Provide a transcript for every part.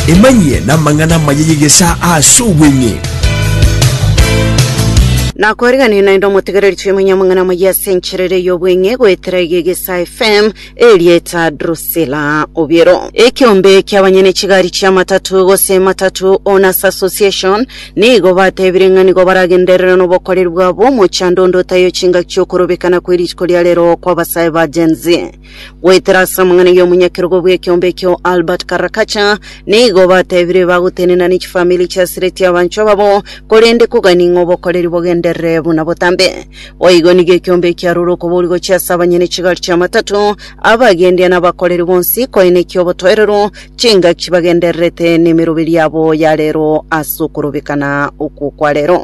Emanyie namang'ana amaya y'egesaa ase obweng'e. Nakoriganire naende omotegereri toimanye amang'ana amaya ase enchera ere y'obweng'e goetera eye y'egesaa FM, erieta Drusilla Obiero. Ekiombe ki'abanyene chigari chi'amatatu gose Matatu Owners Association nigo batebire ng'a nigo baragenderere nobokoreri bwabo omochando onde otayo chingaki chi'okorobekana kwerituko ria rero kw'abasae ba Gen-Z. Goetera ase amang'ana y'omonyakerogo bw'ekeombe ekio Albert Karakacha, nigo batebire bagotenena ne chifamiri chiasireti abanchwa ababo, korende kogani ng'a obokoreri bogenderere buna botambe. Boigo nigo ekeombe ekiarure okoboria gochia ase abanyene chigari chi'amatato, abagendia na abakoreri bonsi, koeneki obotoereru, chingaki bagendererete nemeroberi yabo ya rero ase okorobekana okwo kwa rero.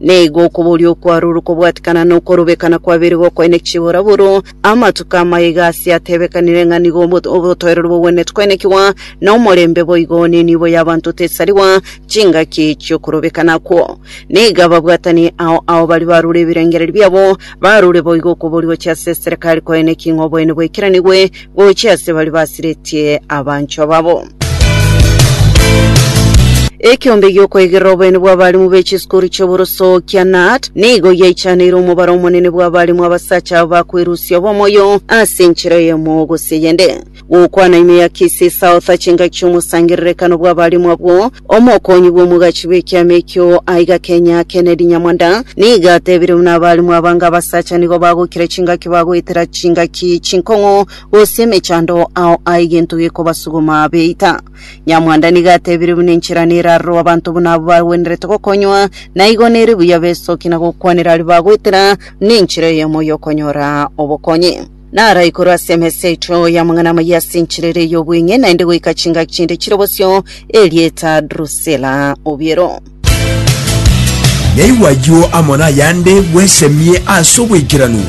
Nigo okoboria okwarure okobwatikana na okorobekana kwabeire gokoine chibora buru. Amatuko amaya iga ase atebekanire ng'a nigo obo- obotoereru bogwenerete koinekigwa, na omorembe boigo, na enibo y'abanto tesarigwa chingaki chi'okorobekana okwo. Nigo ababwatani ao ao baria barure ebirengererio biabo, barure boigo okoboria gochia ase eserekari koine ki ng'a oboene bwaikiranigwe, gochia ase baria basiretie abanchwa babo. Ekeombe gi'okoegerera oboene bw'abarimu be chisukuru chi'oboroso kia NAT nigo giaichaneire omobaro omonene bw'abarimu abasacha aba bakwerusia obomoyo ase enchera eyemo gose eyende. Gokwana ime ya Kisii South, chingaki chi'omosangererekano bw'abarimu abwo Omokonyi bw'omogachi bw'ekiama ekio aiga Kenya Kennedy Nyamwanda nigo atebire buna abalimu abange abasacha nigo bagokira chingaki bagoetera chingaki chinkong'u gose emechando ao aye gento gekobasuguma beita. Nyamwanda nigo atebire buna enchera nerarorwe abanto buna abwo bagwenerete gokonywa na igo nere buya besoki na gokwanera aria bagoetera buna enchera eyemo y'okonyora obokonyi. Naro igoro ase emesa yaito y'amang'ana amayia ase enchera ere y'obweng'e, naende goika chingaki chinde chire bosio, erieta Drusila obiero. Naigwa ayio amo nayande bwesemie ase obwaikeranu.